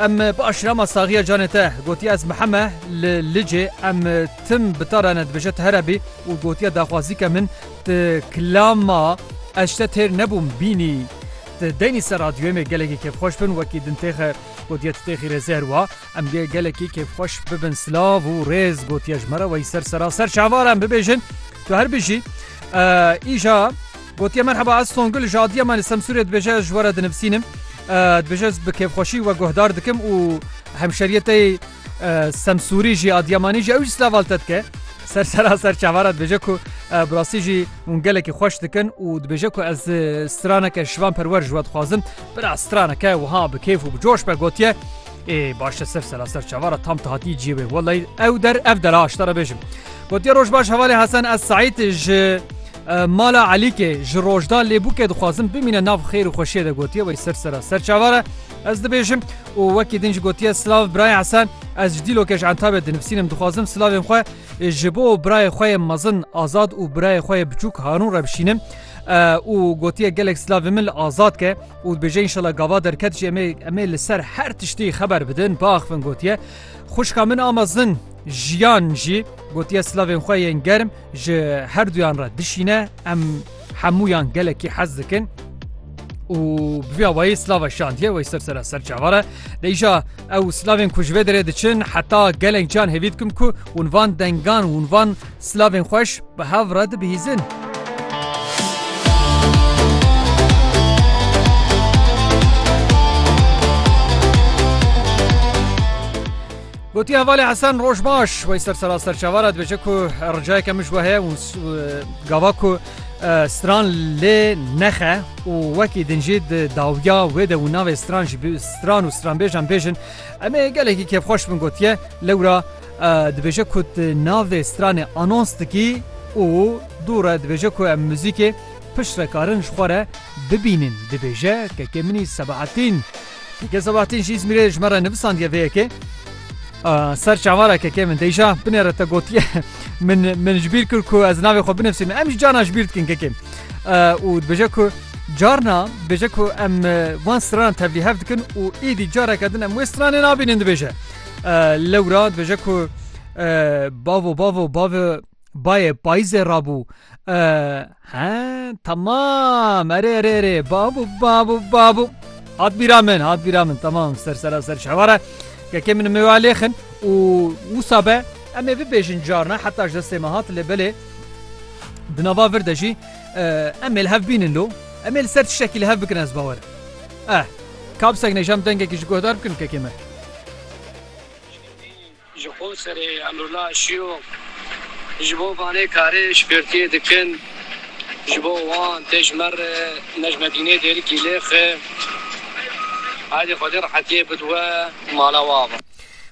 Em bi aşîra ma saxiya canê te. Gotiye ez miheme li Licê em tim bi te re ne dibêje tu here bî û gotiye daxwazî ke min ti kilama ez ji te têr nebûm bînî ti deynî ser radyoyê me gelekî kêfxweş bin wekî din têxe gotiye tu têxî rêzê her wa em gê gelekî kêfxweş bibin silav û rêz gotiye ji me re wey ser seraser şahvar em bibêjin tu her bijî îja Gotiye merheba ez Songül ji adiya me li Semsûrê dibêje ji we re dinivisînim. Dibêje ez bi kêfxweşî we guhdar dikim û hemşeriyê te yê Semsûrî jî Adiyamanî jî ew jî silaval te dike. Ser sera ser çavara dibêje ku bi rastî jî hûn gelekî xweş dikin û dibêje ku ez straneke şivan perwer ji we dixwazim. Bira straneke wiha bi kêf û bi coş be gotiye. Ê başe ser sera ser çavara tam te hatî ciyê wê welay ew der ev dera aştara bêjim. Gotiye roj baş hevalê Hesen ez Saîd ji Mala Elîkê ji Rojda lê bûkê dixwazin bimîne nav xêr û xweşiyê de gotiye wey ser sera ser çavar e ez dibêjim û wekî din jî gotiye silav birayê Esen ez ji dîlokê ji entabê dinivîsînim dixwazim silavên xwe ji bo birayê xwe yê mezin azad û birayê xwe yê biçûk Harûn re bişînim û gotiye gelek silavên min li azad ke û dibêje înşela gava derket jî emê emê li ser her tiştî xeber bidin biaxivin gotiye xwişka min a mezin jiyan jî gotiye silavên xwe yên germ ji herduyan re dişîne em hemûyan gelekî hez dikin û biya wayê slava şandiye wey ser sera ser çavare deyja ew slavên ku ji vê derê diçin heta gelek can hêvî dikim ku hûn van dengan hûn van slavên xweş bi hev re dibihîzin. Gotiye hevalê Hesen roj baş wey ser sera serçava re dibêje ku ricayeke min ji we heye û gava ku stran lê nexe û wekî din jî di dawiya wê de û navê stran jî stran û stranbêjan bêjin em ê gelekî kêfxweş bin gotiye lewra dibêje ku navê stranê anons dikî û dû re dibêje ku em muzîkê pişt re karin ji xwe re bibînin dibêje kekê minî sebahetîn Gel Sebahattin jî Îzmîrê ji me re nivisandiye vê yekê. Ser çavara kekê min deyja binê re te gotiye min min ji bîr kir ku ez navê xwe binivîsim em jî carna ji bîr dikin kekê û dibêje ku carna dibêje ku em van stranan tevlî hev dikin û êdî careke din em wê stranê nabînin dibêje lewra dibêje ku bavo bavo bavê Bayê payîzê rabû he temam erê erê erê babû babû babû hat bîra min hat bîra min temam ser sera ser şeware kekê min mêwa lêxin û wisa be em ê bibêjin carna heta ji destê me hat lê belê di nava vir de jî em ê li hev bînin lo em ê li ser tiştekî li hev bikin ez bawer eh kapsek nêjam dengekî ji guhdar bikin kekê me Ji xwe serê Emrullah aşiyo, ji bo vanê karê şpirtiyê dikin, ji bo wan tê ji me re Nejmedînê dêrikî lêxe. Heydê Xwedê rehetiyê bid we mala we ava.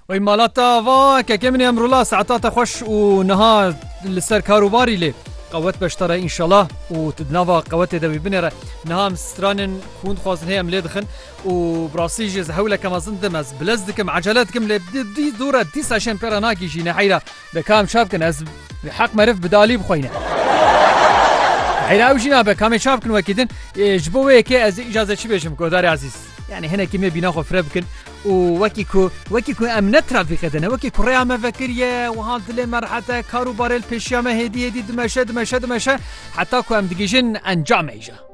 Wey mala te ava, kekê min Emrullah saeta te xweş û niha li ser kar û barî lê qewet beştare înşallah û tu di nava qewetê de wî binêre. Niha em stranin ku hûn dixwazin hê em lê dixin. Û bi rastî jî ez hewleke mezin dim, ez bilez dikim, ecele dikim lê dî dûr e, dîsa şên pê re nagihîjîne heyra. De ka em çav bikin ez bi heq meriv bi dalî bixweyne. Heyra ew jî nabe ka me çav bikin wekî din. Ji bo wê yekê ez îcaze çi bêjim guhdarê ezîz. Yanî hinekî me bîna xwe fireh bikin û wekî ku wekî ku em ne trafîkê de ne wekî ku rêya me vekiriye wiha dilê me rehet e, kar û barê li pêşiya me hêdî hêdî dimeşe dimeşe dimeşe heta ku em digihîjin encamê îja.